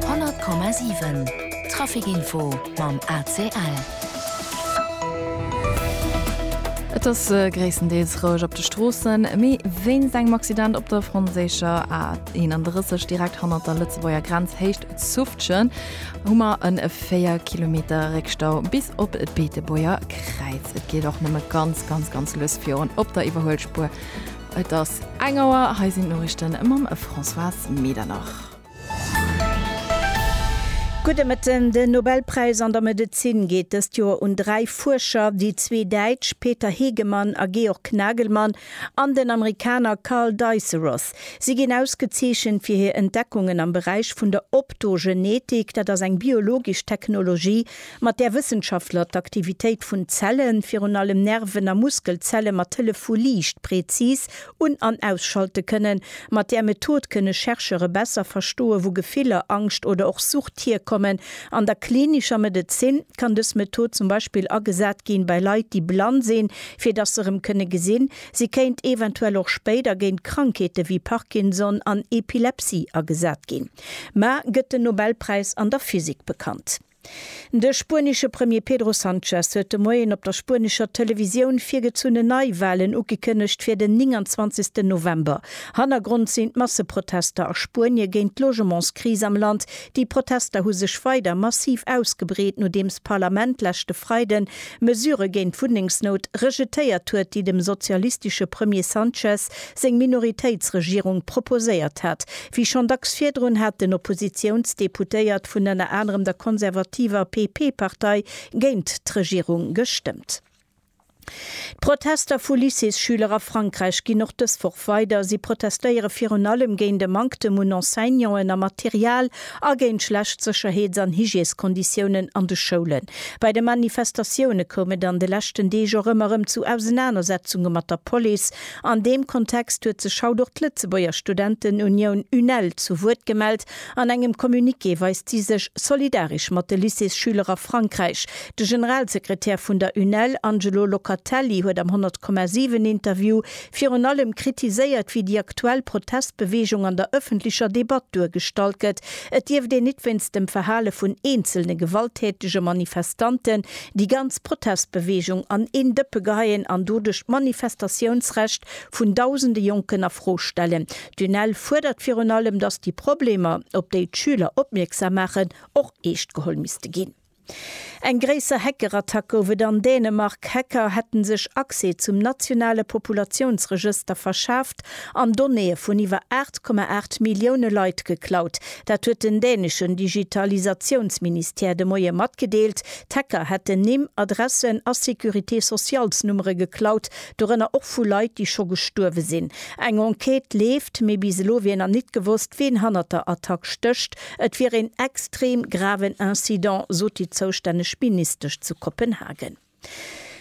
100,7 Trafic Info mam ACL. Et ass gréisstendeels roueg op de Stroossen, mee wéinst engem Accident op der franséischer A 31 direkt hannert der Lëtzebuerger Grenz Héicht Zufftgen hu mer e 4 Kilometer Réckstau bis op d'Beetebuerger Kräiz. Et geet och nëmme ganz, ganz, ganz lues virun op der Iwwerhuelspuer Et ass eng Auer, hei sinn d'Noriichten mam Françoise Medernach. Gudde Mëtten, Den Nobelpräis an der Medezin geet dëst Joer un dräi Fuerscher, déi zwee Däitsch Peter Hegemann a Georg Nagelmann an den Amerikaner Karl Diceros. Si ginn ausgezeechent fir hir Entdeckungen am Beräich vun der Optogenetik, dat ass eng biologesch Technologie, mat där Wëssenschaftler d'Aktivitéit vun Zellen, virun allem Nerven a Muskelzelle mat Hëllef vu Liicht präzis un an ausschalte kënnen. Mat där Method kënne Chercheure besser verstoe wou Gefiller, Angscht oder och Sucht hierkommen. An der klinischer Medezin kann dës Method zum Beispill agesat ginn bei Leit déi blann sinn, fir dass se rëm kënne gesinn. Se kéint eventuell och spéider géint Krankheete wéi Parkinson an Epilepsie agesat ginn. Mä gëtt den Nobelpräis an der Physik bekannt? De spuenesche Premier Pedro Sanchez huet de Moien op der spuenescher Televisioun virgezunne Neiwalen ugekënnegt fir den 29 November. Hannergrond sinn d'Masseprotester a Spuenie géint d'Logementskris am Land. Déi Protester hu sech weider massiv ausgebreet, nodeems d'Parlament leschte Freiden Mesure géint d'Wunnengsnout rejetéiert huet, déi dem sozialistesche Premier Sanchez seng Minoritéitsregierung proposéiert hat. Wéi schonn dacks virdrun hat den Oppositiounsdeputéiert vun ënner anerem der konservativer PP-Partei géint d'Regierung gestëmmt. D'Protester vu Lycéesschüler a Frankräich ginn och dës Woch weider. Si protestéiere virun allem géint e Manktem un Enseignanten a Material a géint schlecht Sécherheets an Hygieskonditiounen an de Schoulen. Bei de Manifestatioune koum et an de leschten Deeg och ëmmer erëm zu Ausenanersetzunge mat der Police. An deem Kontext huet sech haut och d'Lëtzebuerger Studentenunioun UNEL zu Wuert gemellt. An engem Communiqué weist si sech solidaresch mat de Lycéesschüler a Frankräich. De Generalsekretär vun der UNEL, Angelo Locatelli, huet am 100,7 Interview virun allem kritiséiert, wéi déi aktuell Protestbeweegung an der ëffentlecher Debatt duergestallt gëtt. Et dierft een nit wéinst dem Verhale vun eenzelne gewalttätege Manifestanten Déi ganz Protestbeweegung an een Dëppe geheien an doduerch d'Manifestatiounsrecht vun dausende Jonken a Fro stellen. D'UNEL fuerdert virun allem, datt déi Problemer, op déi d'Schüler opmierksam maachen, och eescht geholl misste ginn. Eng gréisser Hackerattack gouf et an Dänemark. Hacker hätte sech Accès zum nationale Populatiounsregëster verschaaft an Donnéeë vun iwwer 8,8 Millioune Leit geklaut. Dat huet den däneschen Digitalisatiounsministère de Moie matgedeelt. D'Hacker hätten Nimm, Adressen a Sécurité-socialsnummere geklaut, dorënner och vu Leit, déi scho gestuerwe sinn. Eng Enquête leeft, mee bis elo wier nach nit gewosst, wien hannert der Attack stécht. Et wier een extrem graven Incident, sot déi zoustänneg Ministesch zu Kopenhagen.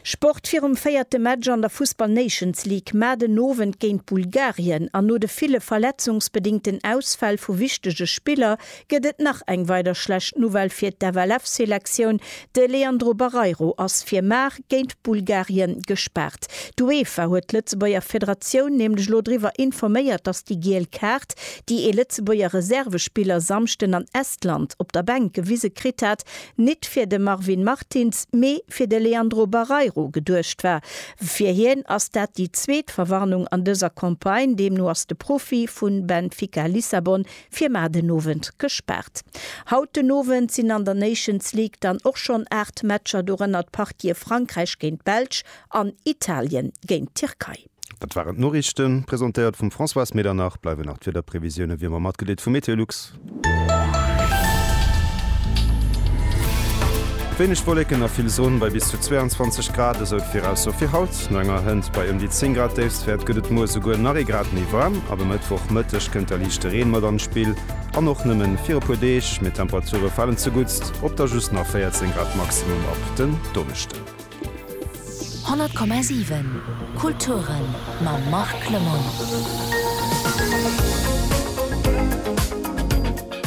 Sport, Virum véierte Match an der Fussball Nations League mar den Owend géint Bulgarien an no de ville verletzungsbedéngten Ausfäll vu wichtege Spiller, Gëtt et nach eng weider schlecht Nouvelle fir d'FLF-Selektioun, De Leandro Barreiro ass fir Mar géint Bulgarien gespaart. D'Uefa huet d'Lëtzebuerger Federatioun nämlech elo driwwer informéiert, datt déi giel Kaart, déi ee Lëtzebuerger Reservespiller Samschden an Estland op der Bänk gewise kritt hat, nit fir de Marvin Martins, mee fir de Leandro Barreiro geduecht war. Fir hien ass dat déi zweet Verwarnung an dëser Campagne. Deemno ass de Profi vu Benfica Lissabon Fir mar den Owend gespaart. Haut den Owend sinn an der Nations League dann och schonn 8 Matcher, dorënner d'Partie Frankräich géint d'Belsch an Italien géint d'Tierkei. Dat waren d'Noriichten, presentéiert vum Françoise Medernach. Bleiwen nach d'Wiederprevisioune wéi ëmmer matgedeelt vu MeteoLux. Wéineg Wolleken a vill Sonn bei bis zu 22 Grad, esou d'Virausso fir haut. No enger Hënt bei ëm déi 10 Grad Déifstwäert gëtt et muer souguer nach ee Grad méi waarm. Ab e Mëttwoch Mëtteg kënnt da liichte Reen mat an d'Spill an och nëmme fir e puer Deeg. Mee d'Temperature falen zeguttst op da just nach 14 Grad Maximum ab den Donneschden. 100,7 Kulturen mam Marc Lemmon.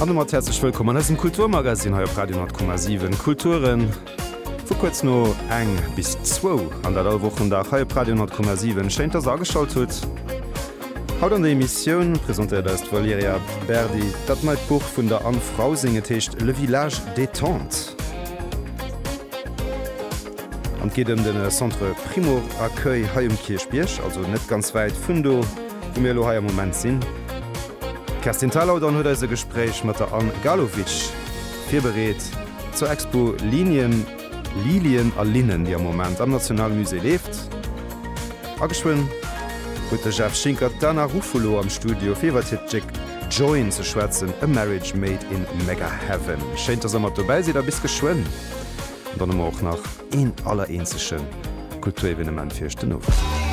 An domat häerzlech wëllkomm an eisem Kulturmagazine hei op Radio 100,7 Kulturen. Vu kuerz no eng bis zwou an dat all Wochendag hei op Radio 10,7. Schéin dass der ageschalt hutt. Haut an der Emissioun presentéiert eis d'Valerija Berdi dat neit Buch vun der Anne Frausing, et heescht Le village détente an et geet ëm de Centre Primo Accueil hei um Kierchbierg, also net ganz wäit vun do wou mir elo hei am Moment sinn. D'Kerstin Thalau dann huet eis e Gespréich mat der Anne Galovic virbereet. Zur Expo Linien, Lilien a Linnen, déi am Moment am National Musée leeft. A geschwënn huet de Jeff Schinkert d'Ana Ruffolo am Studio, fir iwwert hiert Stéck Join ze schwätzen, a marriage made in Megaheaven. Schéin, dass der mat dobäi sidd a bis geschwënn. An dann hu mer och nach een allereenzege Kulturevenement fir iech den Owend.